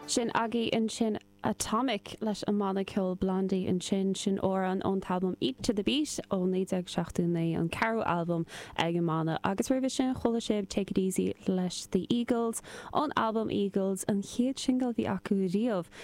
Sin agaibh ansin Atomic leis an mbanna ceoil Blondie ansin. Sin amhrán ón t-albam Eat to the Beat ó 1979, an ceathrú albam ag an mbanna. Agus roimhe sin chuala sibh Take It Easy leis The Eagles ón albam Eagles, an chéad singil a bhí acu riamh.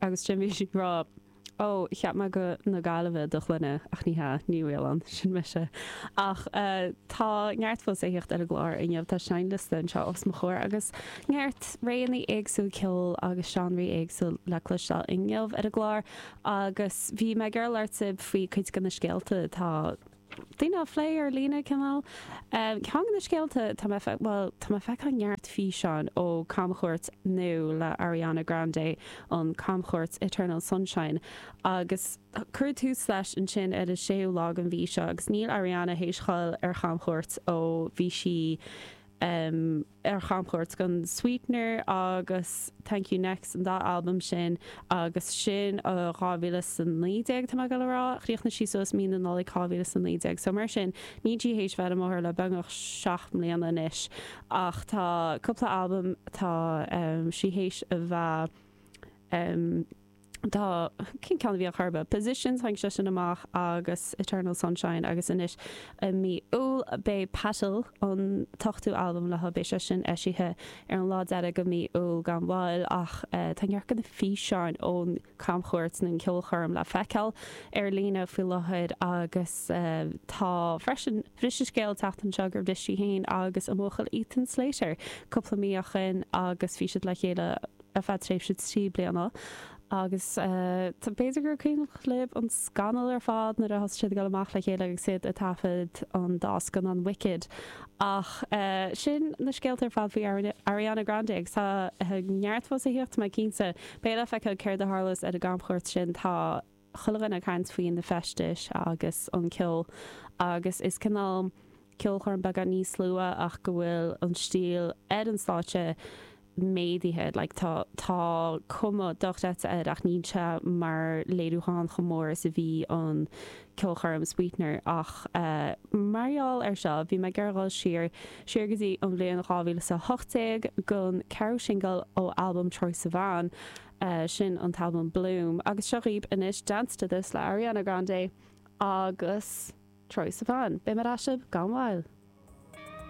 Agus ansin bhí sí ag rá, Ó, cheap mé go na Gaillimhe do shloinne, ach ní hea, Ní Mhaoláin, sin mise. Ach tá neart fós le thíocht ar an gclár inniu, tá seinnliosta anseo os mo chomhair agus neart réanna éagsúil ceoil agus seánraí éagsúil le cloisteáil inniu ar an gclár. Agus bhí mé ag labhairt libh faoi cuid de na scéalta atá. daoine á phlé ar líne, cineál. Ceann de na scéalta, tá mé, bhuel, tá mé ag feiceáil neart físeáin ó camchuairt nua le Ariana Grande, an camchuairt Eternal Sunshine, agus cuireadh tús leis ansin ar an séú lá den mhí seo agus níl Ariana théis dul ar chamchuairt ó bhí sí, em, ar chamchuairt gon Sweetener agus Thank You Next, an dá albam sin agus sin ó 2019, tá mé ag goil a rá. Chríochnaigh sí suas mí na Nollaig 2019 so mar sin níl sí théis a bheith ar an mbóthar le beagnach seacht mbliana anois ach tá cúpla albam atá sí théis a bheith tá, cén ceann a bhí ar chor ar bith? Positions, tháinig sé sin amach agus Eternal Sunshine agus anois i mí Iúil beidh Petal, an t-ochtú albam léi, beidh sé sin eisithe ar an lá deiridh de mhí Iúil gan mhoill ach tá neart de na físeáin ón gcamchuairt nó an cheolchoirm le feiceáil ar líne faoi láthair agus tá freisin, bhris an scéal an tseachtain seo gur bhris sí féin agus a buachaill Ethan Slater cúpla mí ó shin agus bhí siad le chéile. ar feadh tréimhse trí bliana agus b'fhéidir gur cuimhneach lib an scannal ar fad nuair a thosaigh siad ag dul amach le chéile agus iad ag taifead an dá scannán Wicked ach sin na scéalta ar fad faoi Ariana Grande agus tá neart fós le thíocht tá mé cinnte. Beidh le feiceáil céard a tharlós ar an gcamchuairt sin. Tá. chuile dhuine ag caint faoi na feistis agus an ceol agus is cineál ceolchoirm beagán níos lú ach go bhfuil an stíl ar an stáitse méadaithe, like tá tá cuma dochreidte air ach níl sé mar léiriúchán chomh mór is a bhí an ceolchoirm Sweetener ach eh mar gheall ar seo bhí mé ag iarraidh dhul siar siar go dtí an bhliain 2018 gon ceathrú singil ó albam Troye Sivan sin an t-albam Bloom agus seo dhaoib anois Dance To This le Ariana Grande agus Troye Sivan. Beidh mé ar ais libh gan mhoill!